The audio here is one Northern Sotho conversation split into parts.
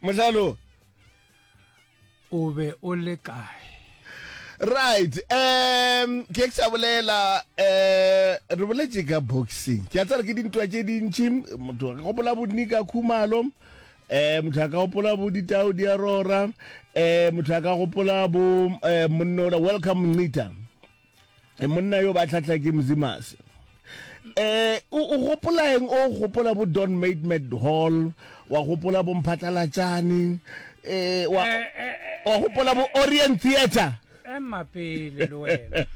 mohlalo o be o le kae right um ke ke sa bolela um re boletse ka boxing ke a tsara ke dintwa tše dintši motho ka gopola bodni ka khumalo eh motho a ka gopola bo ditao di a rora eh motho a ka gopola bo eh monnola welcome ncita e monna yo ba tlhatla ke mzimas eh o gopola eng o gopola bo don made mad hall wa gopola bo mphatlalatšane eh wa eh, eh, eh, wa gopola bo orient theater ema pele le wena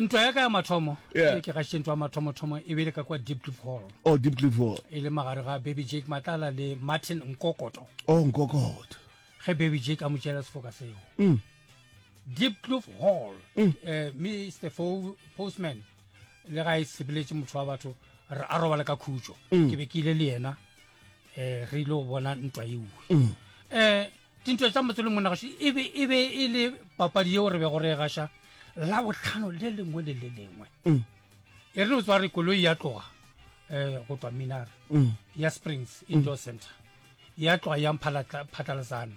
ntwa ya ka ya mathomo e ke gaše ntwa ya mathomothomo e bele ka kwa deep cliff hall oh deep cliff hall e le magare ga baby jake matlala le martin nkokoto oh nkokoto ge baby jake a mo tšela sefoka seo mm. Diepkloof hall mm. eh, mr Fo postman le ga e sebeletše motho wa batho re a robala ka khutšo mm. ke be ke ile le yena um re ile go bona ntwa eue um mm. eh, dintwa tsa motse le monagasho e be e, e le papadi yeo re be go re gaša la botlhano le lengwe le le lengwe e re o tswa re koloi ya tloga um go tswa minare ya springs indoor center ya tloga ya phatlalasano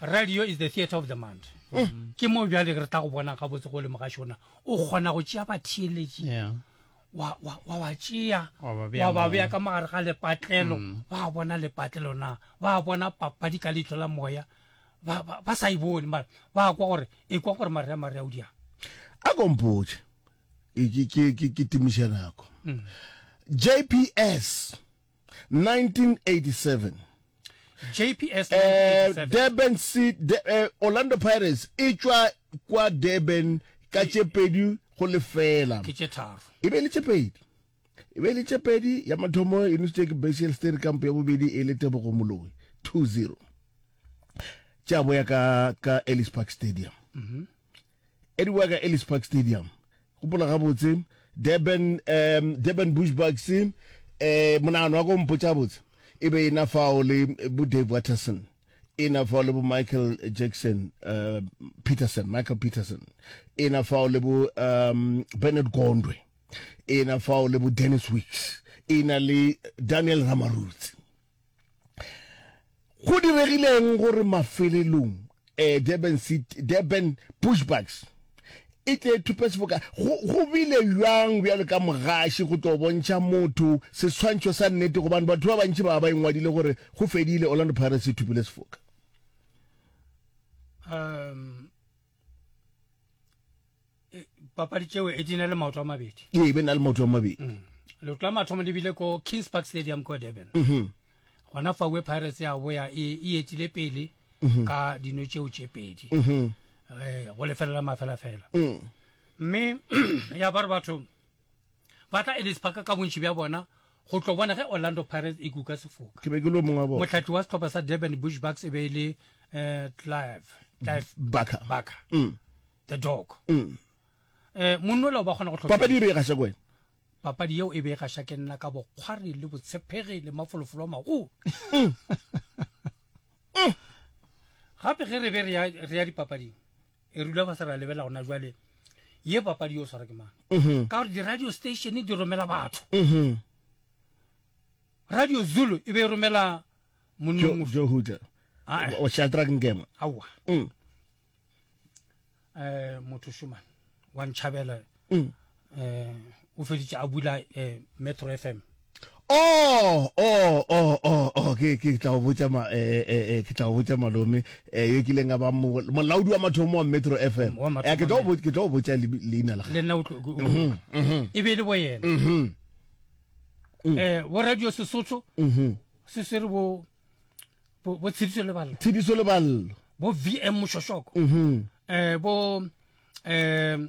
radio is the theatre of the mind eh. ke moo bjale re tla go bona gabotse go le mogašona o kgona go tšea batheeletši wa ba tšea wa ba beya ka magare ga lepatlelo mm. ba bona lepatlelo na ba bona papadi ka leitlo la moya ba sa e bone mara ba kwa gore e kwa gore mare ya mare ya o diang a kompotše ke timiša nako mm. jps 1987. JPS 1987. Eh, Durban City, de, eh, Orlando Pirates e tšwa kwa Durban ka tše pedi go lefela. Ke tše tharo. E be le tše pedi. E be le tše pedi ya mathomo e nusitše ke Basiel Steri kampo ya bobedi e le Tebogo Moloi 2-0. Tša boya ka ka Ellis Park Stadium. Mm -hmm. Eddie wa ka Ellis Park Stadium. Gopola gabotse, Durban, um, Durban Bushbucks, um, eh, monagano wa ka o mpotša botse, e be ena fao le bo Dave Watterson, ena fao le bo Michael Jackson, uh, Peterson, Michael Peterson, ena fao le bo um, Bernard Gondwe, ena fao le bo Dennis Wicks, ena le Daniel Ramarutsi. Go diregileng gore mafelelong eh, Durban, City, Durban Bushbucks e tle e thupe seboka go, go bile bjang bjalo ka mogaši go tlo bontšha motho seswantšho sa nnete gobane batho ba bantši ba ba engwadile gore go fedile Orlando Pirates e thupile sefoka um e, papadi tšeo e di na le maoto a mabedi ee be na le maoto a mabedi mm. leoto la mathomo le bile ko kings park stadium ko durban mm-hmm. gona fawe pirates ya boya e, e etile pele mm-hmm. ka dino tšeo tše pedi mm-hmm. eh, go lefelela mafelafela mm. mme ya ba re batho ba tla Ellis Park ka bontši bja bona go tlo bona ge Orlando Pirates e kuka sefoka. Ke be ke lo mongwa bona. Motlhatli wa setlhopha sa Durban Bush Bucks e be e le eh, Clive Clive Barker. Barker. Mm. The dog. Mm. Eh, monnola o ba kgona go tlhopa. Papadi e be e gasha kwena. Papadi yeo e be e gasha ke nna ka bokgwari le botshepegi le mafolofolo a magolo. Mm. Mm. Gape ge re be re ya dipapading e rula ba se ra lebela gona jwale ye papadi yo swara ke mang mhm. ka gore di-radio station di romela batho mhm. radio zulu e be e romela monnjohuta ah, eh. shadrack nkema aowa um mm. eh, motho shumane wa ntšhabela um o feditše a bula metro f m Oh, oh, oh, oh, oh, ke ke tla o botša ma eh, eh, eh, ke tla o botša malome eh, yo kileng a ba mo- molaodi wa mathomo wa Metro FM. Wa mathomo, Eh, ke tla o mme. bot- ke tla o botša lebi- leina la le gagwe. nna o tlo- o- Mhm, mhm, e be e le bo yena mhm, um bo radio sesotho mhm. se swere bo bo bo tshediso le balla Tshediso le ballo. bo vm mošošoko Mhm, um bo um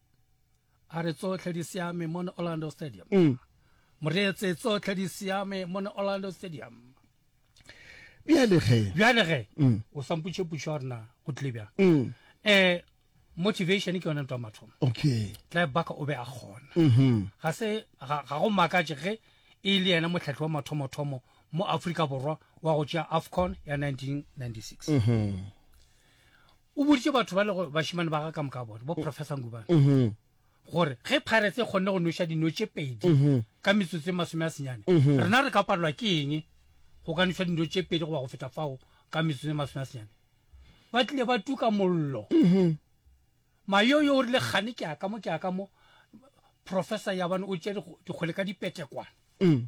A re tsohle di siame mona Orlando Stadium. Mm. Moreetse tsohle di siame mona Orlando Stadium. Bjale ge. Bjale ge. Mm. O samputše putšo gore na go tlile bjang. Mm. Eh motivation ke yone ntwa mathomo okay tla baka o be a gona mhm. ga se ga go makatše ge e le yena motlhatlhi wa mathomothomo mo aforika borwa wa go tšea afcon ya 1996 mhm. o boditše batho ba lego bašimane ba ga ka moka bone bo mm. professor ngubane mm-hmm. gore ge pirates e kgonne go noša dino tše pedi mm-hmm. ka metsotso e masome a senyane mm-hmm. rena re ka palelwa ke eng go ka noša dino tše pedi goba go feta fao ka metsotso e masome a senyane ba tlile ba tuka mollo mayoyo o rile gane ke aka mo ke aka mo professor yabane o tšea dikgole ka dipetekwane mm.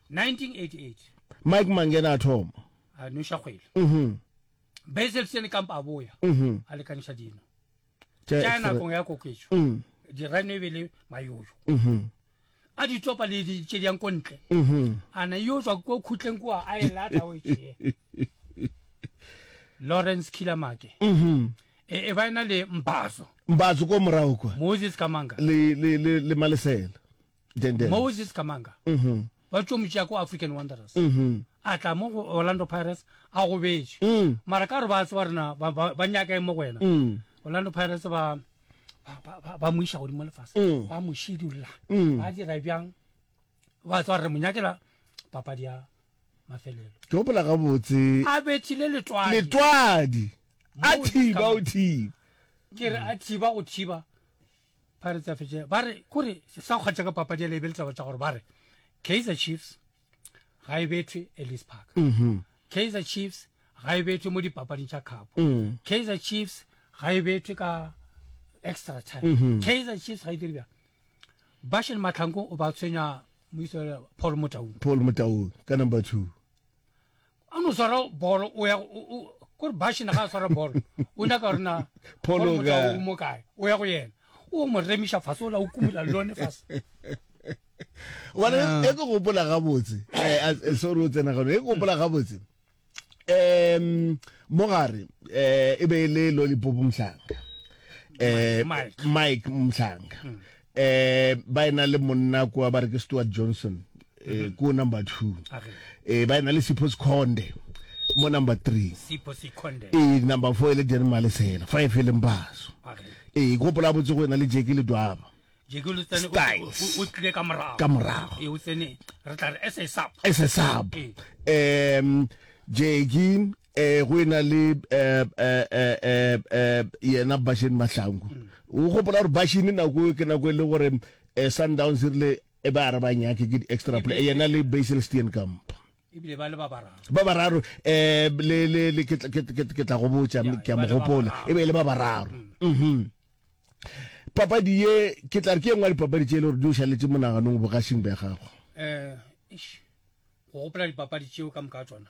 1988. Mike Mangena a thoma. A noša kgwele. Mhm. Basil Steenkamp a boya. Mhm. A lekaniša dino. Tša Tša X-ray. nakong ya koketšo. Mm. Dirano e be le mayoyo. Mhm. A di tsopa le di tše di yang ko ntle. Mhm. A na yo tswa ko khutleng kua a e lata o e tšee. Lawrence Killer Make. Mhm. E e ba e na le Mbazo, Mbatso ko morago kwa. Moses Kamanga. Le le le le malesela. Dendels. moses kamanga Mhm. ba tšo mo tšea ko african wanderers Mhm. a tla mo go orlando pirates a gobetše Mm. mara ka gore ba tseba rena ba- ba ba nyaka eng mo go wena Mm. orlando pirates ba ba- ba- ba- ba mo iša godimo lefase Mm. ba mo shedula Mm. ba dira bjang ba tswa re mo nyakela papadi ya mafelelo ke gopola gabotse a bethile letwadi letwadi a Moses thiba o Kamanga. thiba ke re a thiba go thiba Pirates ya fetše ba re kore se sa kgwatša ka papadi ya leebe letaba tša gore ba re Kaizer Chiefs ga e betwe Ellis Park mm -hmm. Kaizer Chiefs ga e betwe mo dipapading tša khapo mm. Kaizer Chiefs ga e betwe ka extra time mm -hmm. Kaizer Chiefs ga e dire bjang Bashen Matlhanko o ba tshwenya moiso Paul Motaung Paul Motaung ka number 2 a no swara bolo o ya kore bashina ga a swara bolo o nyaka rena phologao mo kae o ya go yena o mo remiša fase o la o kumula lone fase wane ah. e ke gopola gabotse eh, eh, sorry o tsena gano e ke gopola gabotse um mogare um eh, e be e le lolipop mhlanga um mike mhlanga hmm. Eh, ba ena le monna kwa ba re ke Stuart Johnson, eh, mhm. ko number two. Eh, ba ena le Sipho Sikhonde, mo number three. Sipho Sikhonde. Eh, number four e le Jerry Malesela, five e leng Baso. Eh, e gopola botse go ena le Jackie Ledwaba. Styles. O tlile ka morago. Ka morago. E o tsene, re tla re SSAP. SSAP. Eh. Um, Jackie, eh go ena le eh eh eh eh, eh yena Bashini Mahlangu o gopola gore Bashini nako ke nako e le gore eh Sundowns e rile e ba re ba nyake ke extra play yena le Basil Steenkamp ebile ba le ba bararo ba bararo eh le le le ke ke ke tla go botsa ke a mo gopola e be le ba bararo mhm papadi ye ke tla re ke engwa dipapadi tse e le gore di o šaletse monaganong bogasing ba gago um go gopola dipapadi tšeo ka moka tsona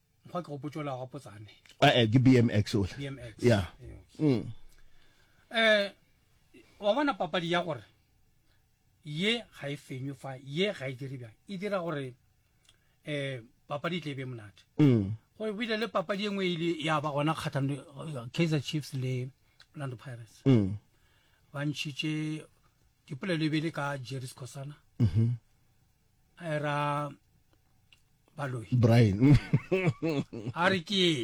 Mokgwa ke go potšola ga potsane. Eh, eh, ke BMX ole. BMX. Yeah. Mm. Eh, wa bona papadi ya gore ye ga e fenywe fa ye ga e dire bjang e dira gore eh papadi e tle e be monate mm. go bile le papadi e nngwe e ile ya ba gona kgathano eh, kaizer chiefs le orlando pirates mm. ba ntšhitše dipolelo e be le ka jerry scosana mm-hmm. era baloi brian a re ke